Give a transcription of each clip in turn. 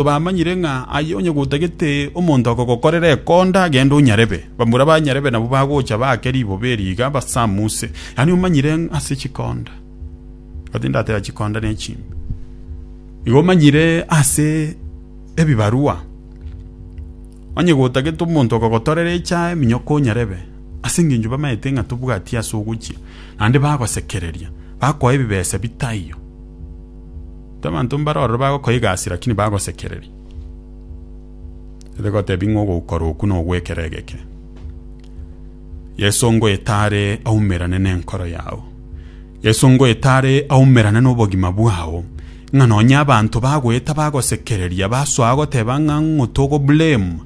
Tobamanyire ng'a aye onye gotagete omonto akogokorera ekonda agende onyarebe. Bamura ba nyarebe nabwo bagocha baake riboba eri iga basamuse. Yaani omanyire ng'a ase chikonda. Igo tindateba chikonda ne chimbe. Igo omanyire ase ebibarua. Onye gotagete omonto akogotorera echae minyoko onyarebe ase engencho bamanyete ng'a tobwati ase ogochia. Naende bagosekereria. Bakoe ebibesa bitaiyo. Abanto mbare ororo bagokoiga ase, lakini bagosekereria, ere gotebi ng'a ogoukora oku nogwekera egeke. Yeso ngoeta are aumerane nenkoro yao. Yeso ngoeta are aumerane nobogima bwao. Ng'a nonye abanto bagoeta bagosekereria, basoa goteba ng'a ng'o togoblame.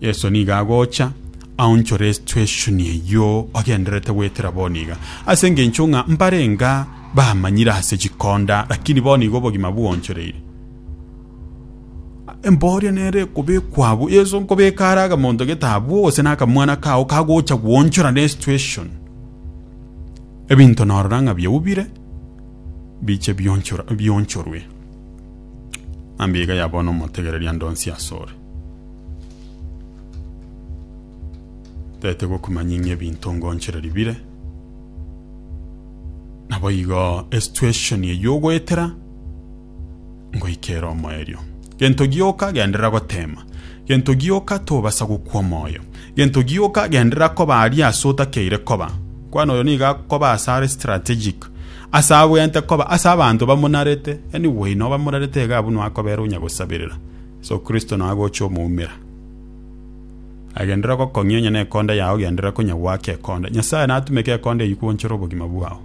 Yeso nigo agocha aonchore esitueshoni eyio ogendererete goetera bono iga. Ase engencho ng'a mbarenge Bamanyire ase chikonda, lakini bono igo obogima bwoonchoreire. Embooria nere ekobekwa abwo. Yeso nkobeka are akamonto gete abwo gose nakamwana kao kagocha gwonchora ne situation. Ebinto norora ng'a bioubire biche bionchora bionchorwe. Ambiga yabona omotegereria ndonsi asore. Tete gokumanya ng'a ebinto ngonchoreri bire. naboigo esituation eyio ogoetera ngoika ere omoerio gento gioka genderera gotema gento gioka tobasa gokwa omoyo gento gioka genderera koba aria ase otakeire koba kwana oyo nigo akoba ase are strategic ase abwenerete koba ase abanto bamonarete any way no bamonarete iga abwo no akobera onya gosaberera so kristo no agocha omoumera. Agenderera gokong'ia onye nekonda yao genderera konya gwake ekonda. Nyasaye natumeke ekonda eyio kwonchere obogima bwao.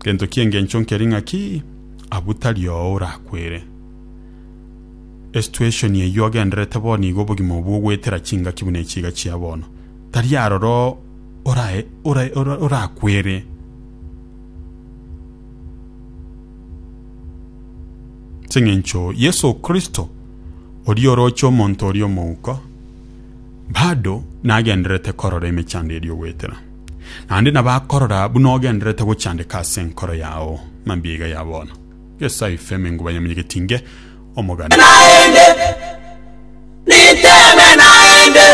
Gento ki'engencho nkeri ng'aki abwo tari oo orakwere. Esituation eyio ogendererete bono iga obogima obwo ogoetera chingaki buna echi iga chia bono. Tari aroro orae orae orakwere. ching'encho Yeso Kristo, oria oroche omonto oria omouko, bado nagendererete korora emechando eria ogoetera. Naende nabo akorora buna ogendererete gochandeka ase enkoro yao mambia iga ya bono. Yeso aifeme nguba ya monyegetinge omogania. naende niteme naende.